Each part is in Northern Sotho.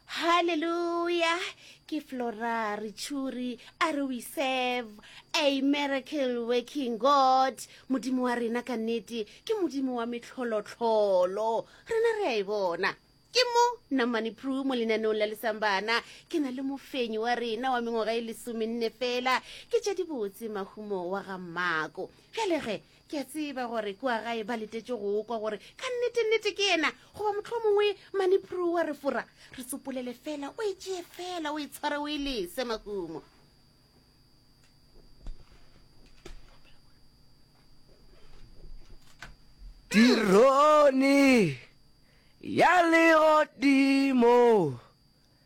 Hallelujah. Ke Flora Richuri a re we serve a miracle working God. Modimo wa rena ka nnete ke modimo wa metlholotlholo. Rena re a e bona. Ke mo Namani Pru mo lenaneong la lesambana ke na le mofenyi wa rena wa mengwaga e lesomenne fela ke tša dibotse mahumo wa ga mmako bjale ge Ke a tseba gore kua gae ba letetše go kwa gore ka nnetennete ke yena goba motlho mongwe maniprue wa re fora re tsopolele fela o e tšee fela o e tshware o e lese mahumo tirone ya legodimo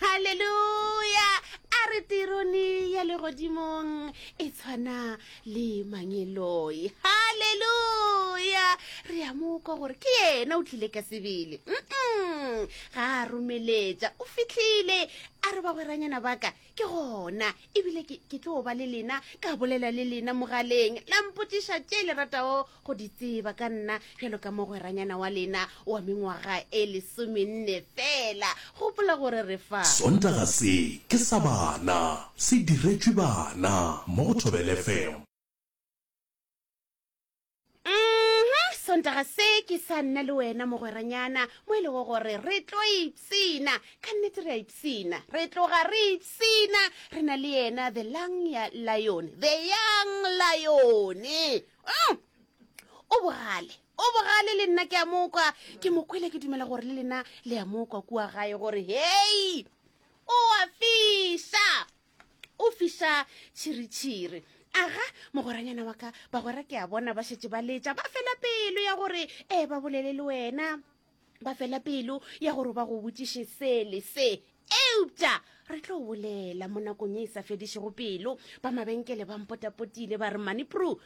Haleluya! A re tirone ya legodimong e tshwana le mangeloi. Haleluya! Re a mo kwa gore ke yena o tlile ka sebele. Mm-mm. Ga a romeletša, o fitlhile. A re bagweranyana baka, ke gona ebile ke tlo ba le lena ka bolela le lena mogaleng la mpotsiša tše le ratago go di tseba ka nna bjalo ka mogweranyana wa lena wa mengwaga e lesomenne fela gopola gore re fa sontaga se ke sa bana se diretšwe bana mo go thobelefm sontaga se ke sa nna le wena mogweranyana mo e lego gore re tlo ipsena ka nnete re a ipsena re tloga re ipsena re na le yena the lang ya lion the young lion mm. o bogale o bogale le nna ke a mokwa ke mokwele ke dumela gore le lena le ya mokwa kua gae gore hei o a fisa o fiša tšhiritšhiri aga mogweranyana wa ka bagwera ke a bona ba šetše ba letša ba fela pelo ya gore ee ba bolele le wena ba fela pelo ya gore ba go botšiše sele se eupša re tlo bolela mo nakong e e sa fedišego pelo ba mabenkele ba mpotapotile ba re manipru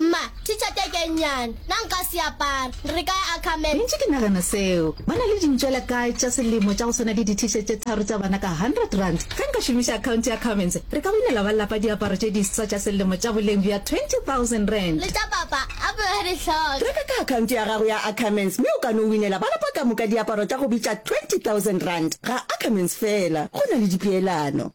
Mma, Teacher tee ke nnyane. Na nka se apara? Re ka ya Ackerman. Ke ntše ke nagana seo. Ba na le dintšwela kae tša selemo tša go swana le di-T-shirt tše tharo tša bana ka hundred rand? Ge nka šomiša account ya Ackermans, re ka winela ba lapa diaparo tše diswa tša selemo tša boleng bja twenty thousand rand. Le tša papa a be a di hloka. Reka ka account ya gago ya Ackermans mme o ka no winela ba lapa ka moka diaparo tša go bitša twenty thousand rand. Ga Ackermans feela go na le dipeelano.